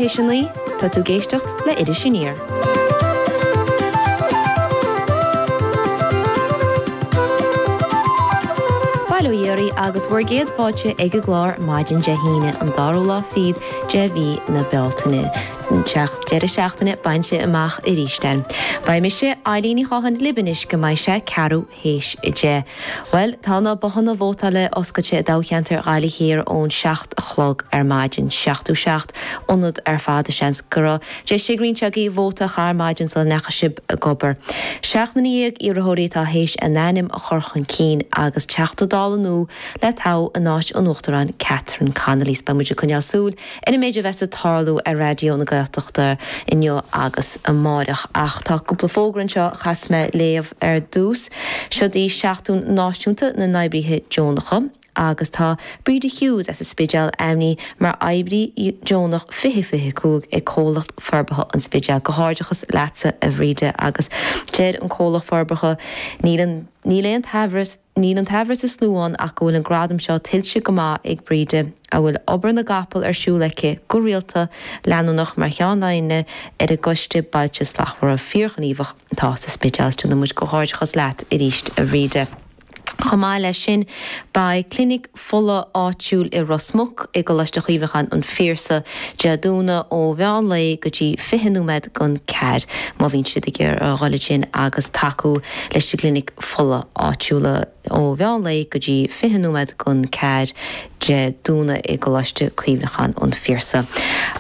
Tá tú ag éisteacht le Iris Aniar. Bail ó Dhia oraibh agus bhur gcéad fáilte ag an gclár maidin Dé hAoine, an dara lá fichead de mhí na Bealtaine. Tá an deireadh seachtaine bainte amach aríst againn. Beidh mise, Eibhlín Ní Chatháin libh anois go mbeidh sé ceathrú théis 10. Bhuel, tá na bothanna vótála oscailte i dtoghcheantar Ghaillimh Thiar ón 7 a chlog ar maidin. 77 ionad ar fad. Seans go raibh deis ag roinnt agaibh vóta a chaitheamh ar maidin sula ndeachaigh sibh ag obair. Seacht nduine dhéag iarrthóirí atá théis a n-ainm a chur chun cinn agus Teachta Dála nua le toghadh in áit an Uachtaráin Catherine Connolly. So beidh muid ag coinneáil súil Ar an méid a bheas ag tarlú ar Raidió na Gaeltachta inniu agus amáireach. Ach tá cúpla fógra anseo a chaithfeas mé léamh ar dtús. Seod í Seachtain Náisiúnta na nOibrithe Deonacha agus tá Bríde Hughes as an Spidéal ainmnithe mar oibrí deonach 2025 ag Comhlacht Forbartha an Spidéil. Comhghairdeachas leatsa a Bhríde agus deir an Comhlacht Forbartha, Níl, níl an t-amhras, Níl an t-amhras is lú ann ach go bhfuil an gradam seo tuillte go maith ag Bríde, a bhfuil obair na gcapall ar siúl aici go rialta, leanúnach, mar cheannaire ar an gCoiste Bailte Slachtmhara fíorghníomhach atá sa Spidéal. Is tréaslaíonn muid comhghairdeachas leat aríst, a Bhríde. Chomh maith leis sin, beidh Clinic. fola áitiúil i Ros Muc i gColáiste Chuimhneacháin an Phiarsaigh, Dé Domhnaigh ó mheán lae go dtí fiche nóiméad don ceathair, má bhíonn sibh ag iarraidh a dhul ansin agus tacú leis an gclinic fola áitiúla ó mheán lae go dtí fiche nóiméad don ceathair, Dé Domhnaigh i gColáiste Cuimhneacháin an Phiarsaigh.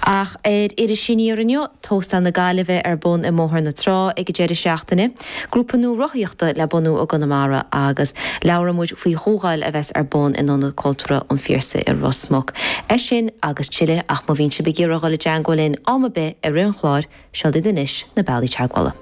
Ach ar Iris Aniar inniu, Tóstal na Gaillimhe le bheith ar bun i mBóthar na Trá ag an deireadh seachtaine, grúpa nua rothaíochta le bunú i gConamara agus labhróidh muid faoi chomhdháil a bheas ar bun in Ionad Cultúrtha an Phiarsaigh i Ros Muc. É sin agus tuilleadh, ach má bhíonn sibh ag iarraidh a dhul i dteangmháil linn am ar bith i rith an chláir, seod iad anois na bealaí teagmhála.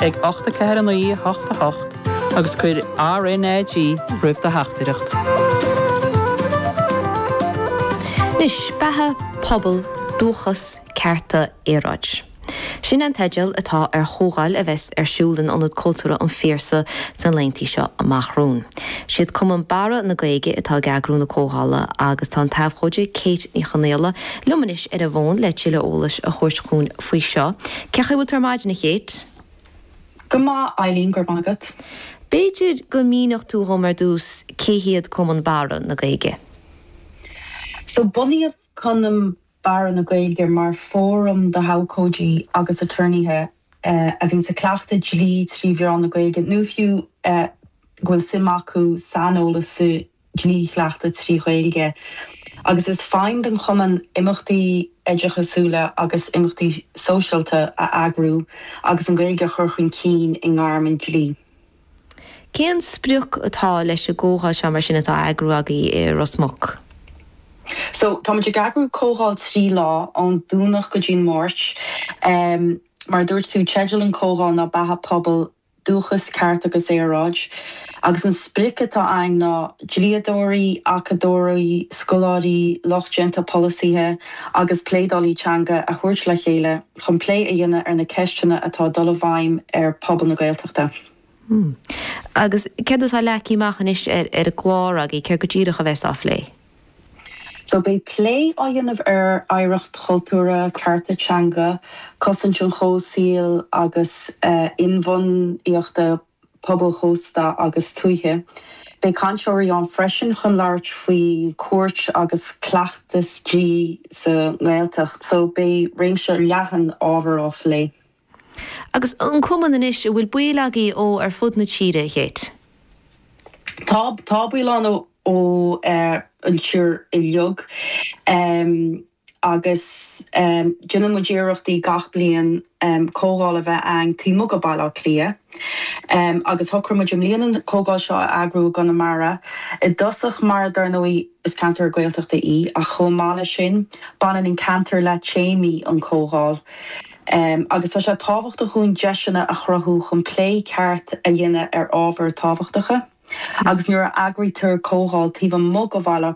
ag 8 4 9 8 8 agus cuir RNAG roimh do theachtaireacht. Anois, Beatha, Pobal, Dúchas, Cearta, Aeráid. Sin an teideal atá ar chomhdháil a bheas ar siúl in Ionad Cultúrtha an Phiarsaigh sna laethantaí seo amach romhainn. Siad Cumann Barra na Gaeige atá ag eagrú na comhdhála agus tá an t-abhcóide Kate Ní Chonghaile liom anois ar an bhfón le tuilleadh eolais a thabhairt dhúinn faoi seo. Cé' chaoi bhfuil tú ar maidin, a Kate? Go maith, Eibhlín, go raibh maith agat. B'fhéidir go míneofá dhom ar dtús cé hiad Cumann Barra na Gaeilge? So, bunaíodh Cumann Barra na Gaeilge mar fóram do abhcóidí agus aturnaetha a bhíonns ag cleachtadh dlí trí mheán na Gaeilge nó fiú go bhfuil suim acu saineolas sa dlí-chleachtadh trí Ghaeilge agus is feidhm don Chumann imeachtaí oideachasúla agus imeachtaí sóisialta a eagrú agus an Ghaeilge a chur chun cinn i ngairm an dlí. Cén sprioc atá leis an gcomhdháil seo mar sin atá a eagrú agaibh i Ros Muc? So, táimid ag eagrú comhdháil trí lá, ón Domhnach go dtí an Máirt. Mar a dúirt tú, teideal an chomhdháil ná Beatha Pobail dúchas, ceart agus aeráid, agus an sprioc atá againn ná dlíodóirí, acadóirí, scoláirí, lucht déanta polasaithe agus pleanálaithe teanga a thabhairt le chéile chun plé a dhéanamh ar na ceisteanna atá ag dul i bhfeidhm ar phobal na Gaeltachta. Agus céard atá leagtha amach anois ar an gclár agaibh? Céard go díreach a bheas á phlé? So beidh plé á dhéanamh ar oidhreacht chultúrtha, cearta teanga, cosaint an chomhshaoil agus inbhuanaitheacht pobail chósta agus tuaithe. Beidh cainteoirí ann freisin chun labhairt faoi cúirt agus cleachtas dlí sa nGaeltacht. So beidh réimse leathan ábhar á phlé. Agus an cumann anois a bhfuil baill agaibh ó ar fud na tíre, a Khate? Tá, tá baill ann ó an tír uilig agus déanann muid iarrachtaí gach bliain comhdháil a bheith againn taobh amuigh de Bhaile Átha Cliath agus shocraigh muid i mbliana an comhdháil seo a eagrú i gConamara i dtosach mar dar ndóigh is ceantar Gaeltachta í ach chomh maith leis sin baineann an ceantar le téamaí an chomhdháil. Emm, agus tá sé tábhachtach dúinn deiseanna a chruthú chun plé ceart a dhéanamh ar ábhair tábhachtacha. Agus nuair a eagraítear comhdháil taobh amuigh de Bhaile Átha